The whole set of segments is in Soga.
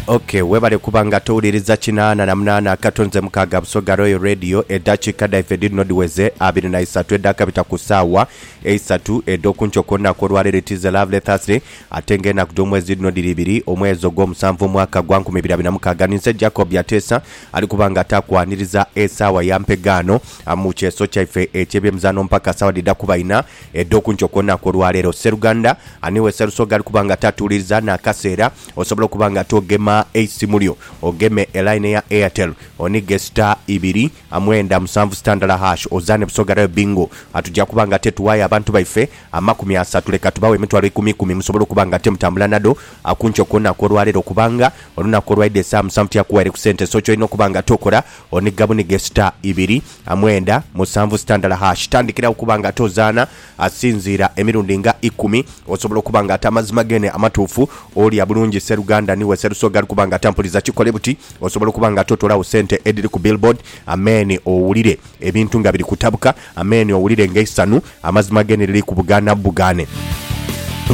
Ok webale kuba nga towuliriza kinaana na munaana akato nze mukaaga Busoga Royal Radio edhakiika dhaife dhirino dhiweze abiri na isatu edhakabita ku saawa eisatu edhokunkyo ku lunaku olwaleero it is a lovely Thursday ate nga enaku dhomwezi dhirino dhiri ibiri omwezi ogwomusanvu omwaka gwa nkumi ibiri abiri na mukaaga ninze Jacob Byateesa ali kuba nga takwaniriza esaawa ya mpegaano mu kyeeso kyaife ekyebyemizaano mpaka saawa dhidha kuba ina edh'oku nkyo ku lunaku olwa leero. Sseruganda, ani we Sserusoga ali kuba nga tatuuliriza n'akaseera? Osobola okuba nga toogema eisimu lyo. Ogeme elayini eya Airtel, onige star ibiri mwenda musanvu star ndala hash, ozaane Busoga Rail Bingo. Tujja kuba nga te tuwaayo abantu baife amakumi asatu, leka tubawe emitwalo ikumikumi musobole okuba nga te mutambula nadho ku nkyo ku lunaku olwa leero kubanga olunaku olwaidha esaawa musanvu tiyakuwaire ku sente. So ky'olina okuba nga tokola, oniga bunige star ibiri A mwenda, musanvu sitandala hash. Tandikira okuba nga tozaana asinziira emirundi nga ikumi. Osobola okuba nga ate amazima gene amatuufu. Olya bulungi sseruganda ni we sserusoga ali kuba nga atampuliza. Kikole buti, Osobola okuba nga totolawo sente edhiri ku billboard. Amen owulire ebintu nga biri kutabuka. Amen owulire nga eisanhu amazima gene liri kubugaana bubugaane.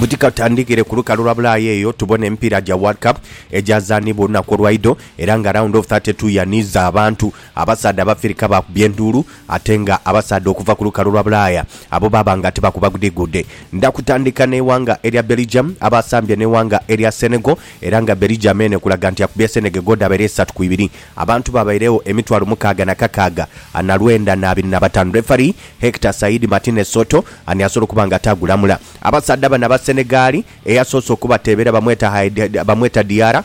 Buti ka tutandikire ku lukalu lwa Bulaaya eyo tubone emipiira gya World Cup egyazaanibwa olunaku olwaidho era nga round of thirty two yaniiza abantu. Abasaadha Abafirika baakubya enduulu, ate nga abasaadha okuva ku lukalu lwa Bulaaya abo baaba nga tibakuba gudhigudhe. Ndha kutandika n'eighanga erya Belgium abaasambye n'eighanga erya Senegal era nga Belgium eno ekulaga nti yakubya Senegegal dhabaire isatu ku ibiri. Abantu baabairegho emitwalo mukaaga na kakaaga ana lwenda n'abiri na bataanu. Refari, Hector Said Martinez Soto, ani asobola okuba nga ate agulamula abasaadha bano Abasenegaali? Eyasoose okubateebera bamweta Haidara, bamweta Diarra.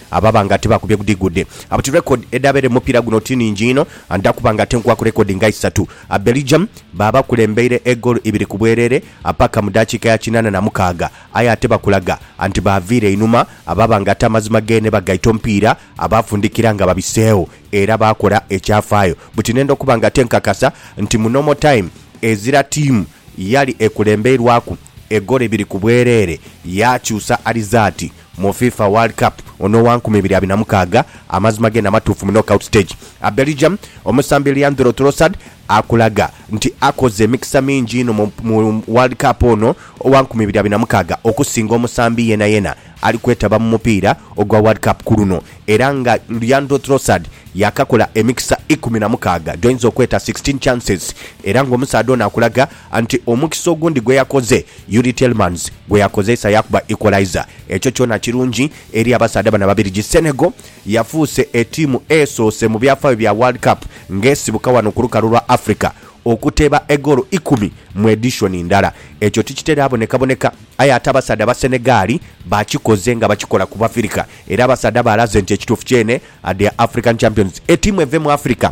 Ababa nga tibakubye gudigudi abuti record edabere mumupira guno ti ningi inho and akuba nga tenkwaku record nga isatu a Belgium babakulembeire egoolo ibiri kubwerere apaka mudakika ya kinana na mukaaga aye ate bakulaga anti baviira einhuma ababa nga ate amazima gene bagaita omupiira abafundikira nga babiseegho era bakora ekyafaayo buti nenda okuba nga tenkakasa nti mu normal time ezira tiimu yali ekulembeirwaku egoolo ibiri kubwerere yakyusa arizaati Mu FIFA World Cup ono owa nkumi ibiri abina mukaaga, amazima ge namatuufu mu knockout stage. A Belgium omusambi Leandro Trossard akulaga nti akoze emikisa mingi inho mu mu World Cup ono owa nkumi ibiri abina mukaaga okusinga omusambi yenayena ali kwetaba mu mupiira ogwa World Cup ku luno era nga Leandro Trossard yakakola emikisa ikumi na mukaaga gyoinza okweta sixteen chances era nga omusaadha ono akulaga Anti omukisa ogundi gwe yakoze Youri Tielemans gwe yakozeisa yaakuba equaliser. Ekyo kyona kirungi eri abasaadha bano Ababirigi. Senegal yafuuse etiimu esoose mu byafaayo bya World Cup ng'esibuka wano ku lukalu lwa Africa okuteeba egoolo ikumi mu edishoni ndala. Ekyo tikitera bonekaboneka aye ate abasaadha ba Senegal bakikoze nga bakikola ku Bafirika era abasaadha baalaze nti ekituufu kyene are their African champions. Etiimu eve mu Africa.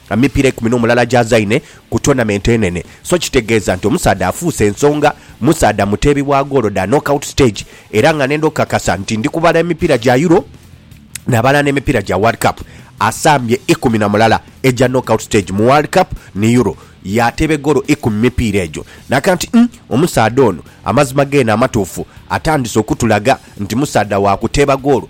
Emipiira eikumi n'omulala gy'azaine ku tournament enene so kitegeeza nti omusaadha afuuse ensonga, musaadha muteebi wa goolo dha knockout stage era nga nenda okukakasa nti ndi kubala emipiira gya Euro nabala n'emipiira gya World Cup, asambye ikumi na mulala egya knockout stage mu World Cup ni Euro yaateeba egoolo ikumi mu mipiira egyo. Naka nti uhm omusaadha ono amazima geene amatuufu atandise okutulaga nti musaadha wa kuteeba goolo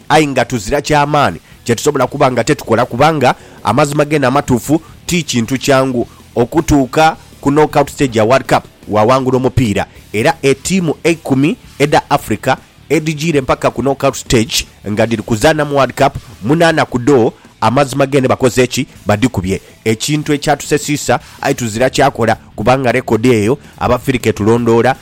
Aye nga tuzira kya maani kye tusobola kuba nga tetukola, kubanga amazima geene amatuufu ti kintu kyangu. Okutuuka ku knockout stage ya World Cup waawangula omupiira, era etiimu eikumi edha Africa edhijiire mpaka ku knockout stage nga dhiri kuzaana mu World Cup, munaana ku dho amazima geene bakoze ki? Badhikubye. Ekintu ekyatusesiisa, aye tuzira kyakola, kubanga rekodi eyo Abafirika etulondoola.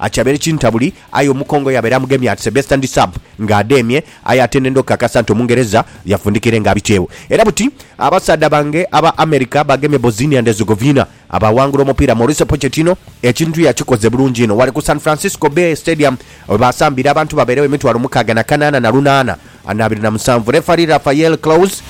Akyabeere kintabuli, aye omukongo yabeere amugemye at the best and sub nga adeemye, aye ate nenda okukakasa nti Omungereza yafundikire nga abikyewo. Era buti abasaadha bange aba America bagemye Bosnia and Herzegovina abaawangula omupiira Mauricio Pochettino ekintu yakikoze bulungi inho wale ku San Francisco Bay Stadium webaasambiire abantu babeerewo emitwalo mukaaga na kanaana na lunaana na abiri na musanvu. Referee Rafael Claus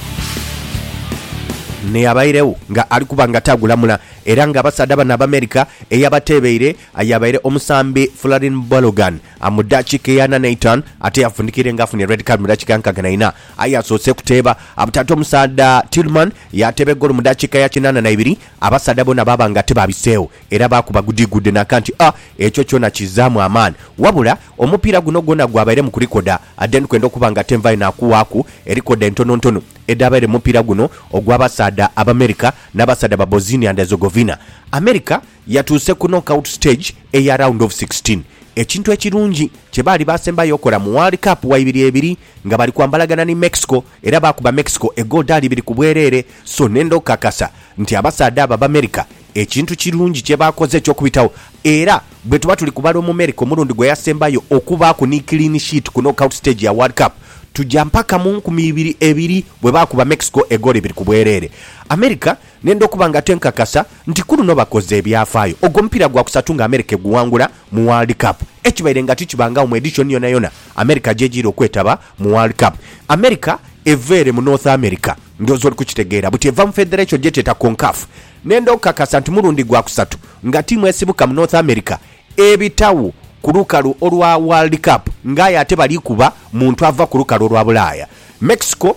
n'eyabairegho nga ali kuba nga taagulamula era nga abasaadha bano Abamerica eyabateebeire Aye abaire omusambi Folarin Balogun mu dakika eya ana n'eitaanu ate yafundikire nga afunye red card mu dakika ya nkaaga na ina. Aye yasoose kuteeba butaata omusaadha Tillman yaateeba egoolo mu dakika ya kinaana na ibiri abasaadha boona baaba nga tibaabiseegho era baakuba gudigudde naka nti a ekyo kyona kizzaamu amaani wabula omupiira guno gwona gwabairemu ku likoda then kwenda okuba nga ate nvaayo nakuwaaku erikoda entonontonu edhaabaire mu mupiira guno ogw'abasaadha Abamerica n'abasaadha ba Bosnia and Herzegovina. America. Yatuuse ku knockout stage eya round of sixteen, ekintu ekirungi kye baali baasembayo okola mu World Cup wa ibiri ebiri nga bali kwambalagana ni Mexico era baakuba Mexico egoal dhaali ibiri ku bwereere so nenda okukakasa nti abasaadha abo Abamerica ekintu kirungi kye baakoze eky'okubitagho era bwe tuba tuli kubala Omumerica omulundi gwe yasembayo okubaaku ni clean sheet ku knockout stage ya World Cup tuja mpaka mu nkumi ibiri ebiri bwe baakuba Mexico egoal ibiri ku bwereere. America. Ng'enda okuba nga tenkakasa nti ku luno bakoze ebyafaayo. Ogwo mupiira gwa kusatu nga Amerika eguwangula mu World Cup. Ekibaire nga tikibangawo mu edishoni yonayona Amerika gy'ejiire okwetaba mu World Cup. Amerika eva ere mu North America, ndhooza oli kukitegeera, buti eva mu federation gyetweta Concaf. Ng'enda okukakasa nti mulundi gwa kusatu nga tiimu esibuka mu North America ebitagho ku lukalu olwa World Cup, ng'aye ate bali kuba muntu ava ku lukalu olwa Bulaaya. Mexico.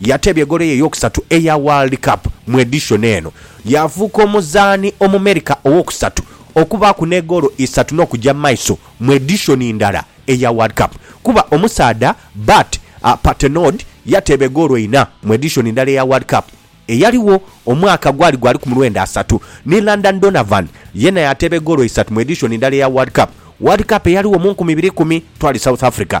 Yateebya egoolo ye ey'okusatu eya World Cup mu edishoni eno, yaafuuka omuzaani Omumerika ow'okusatu okubaaku n'egoolo isatu n'okuja mu maiso mu edishoni ndala eya World Cup kuba omusaadha Bart Patenaude yateeba egoolo ina mu edishoni ndala eya World Cup eyaligho omwaka gwali gwali ku mulwenda asatu ni Landon Donovan yeena yaateeba egoolo isatu mu edishoni ndala eya World Cup World Cup eyaligho mu nkumi ibiri ikumi twali South Africa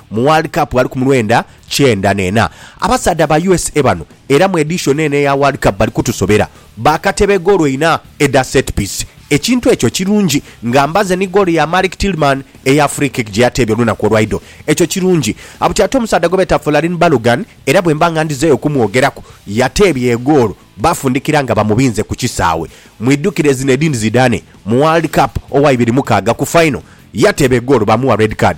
Mu World Cup ali ku mulwenda kyenda n'ena. Abasaadha ba usa bano era mu edition eno eya World Cup bali kutusobera. Baakatebe goolo inha edha set piece. Ekintu ekyo kirungi nga mbaze ni goolo ya Malik Tillman eya free kick gye yateebye olunaku olwaidho. Ekyo kirungi. Buti ate omusaadha gwe beeta Folarin Balogun era bwemba nga ndhizeeyo okumwogeraku, yateebye egoolo bafundikira nga bamubinze ku kisaawe. Mwidhukire Zinedine Zidane mu World Cup owa ibiri mukaaga ku final, yateeba egoolo baamugha red card.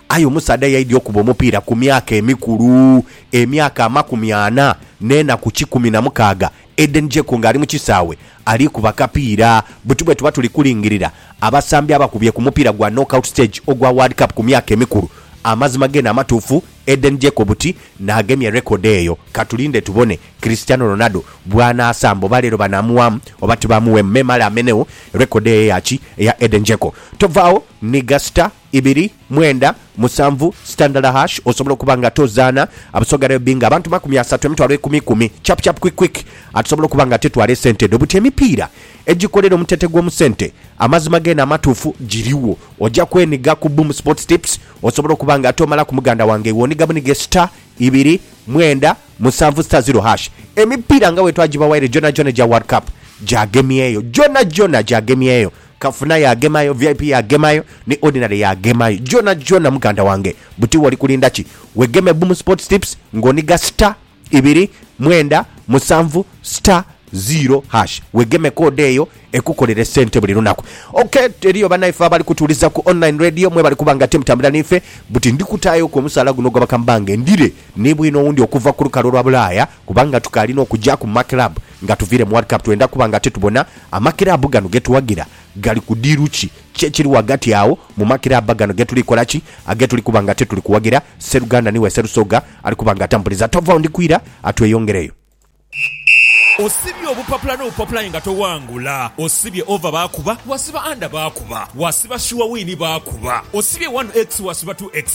Aye omusaadha yaidhi okuba omupiira ku myaka emikulu, emyaka amakumi ana n'enaku kikumi na mukaaga, Edeni Dzeko ng'ali mu kisaawe ali kuba kapiira. Buti bwetuba tuli kulingirira abasambi abakubye ku mupiira gwa knockout stage ogwa World Cup ku myaka emikulu, amazima geene amatuufu, Edeni Dzeko buti n'agemye record eyo. Katulinde tubone Cristiano Ronaldo bw'anaasamba oba leero banaamuwaamu oba tibaamuweemu. Memale amenegho record eyo eya ki? Eya Edeni Dzeko. Tovaagho ni gasita Ibiri, mwenda, musanvu, sitandala hash Osobola okuba nga ate ozaana Abasoga rugby nga abantu makumi asatu, emitwalo ekumi ikumi, chap chap quick quick Ate osobola okuba nga ate twala esente dho buti emipiira egikolera omutete gw'omu sente Amazima geene amatuufu giriwo Oja kweniga ku Boom Sports Tips Osobola okuba nga ate omalaku muganda wange iwe oniga bunige star, ibiri, mwenda, musanvu, star zero hash Emipiira nga wetwagibawaire gyonagyona egya World Cup gyagemyeyo Gyonagyona gyagemyeyo Kafuna yagemayo, vip yagemayo, ni ordinary yagemayo gyona gyona muganda wange buti woli kulinda ki wegeme Boom Sports Tips nga oniga star ibiri mwenda musanvu star zero hash wegeme code eyo ekukolere sente buli lunaku ok eriyo banaife abali kutuwuliza ku online radio mwebale kuba nga temutambula nife buti ndikutayo ku omusaala guno ogwa bakambange ndire ni bwino owundi okuva ku lukalu olwa bulaaya Kubanga tukaali n'okuja ku makiraabu nga tuviire mu World Cup, twenda kuba nga titubona amakiraabu gano ge tuwagira gali ku diiru ki, ki ekiri ghagati agho mu makiraabu gano ge tuli kola ki, age tuli kuba nga tituli kuwagira. Sseruganda niwe Sserusoga ali kuba nga atampuliza. Tova agho ndi kwira atweyongereyo. Osibye obupapula n'obupapula aye nga towangula. Osibye over baakuba, wasiba under baakuba, wasiba sure win baakuba, osibye one x wasiba two x.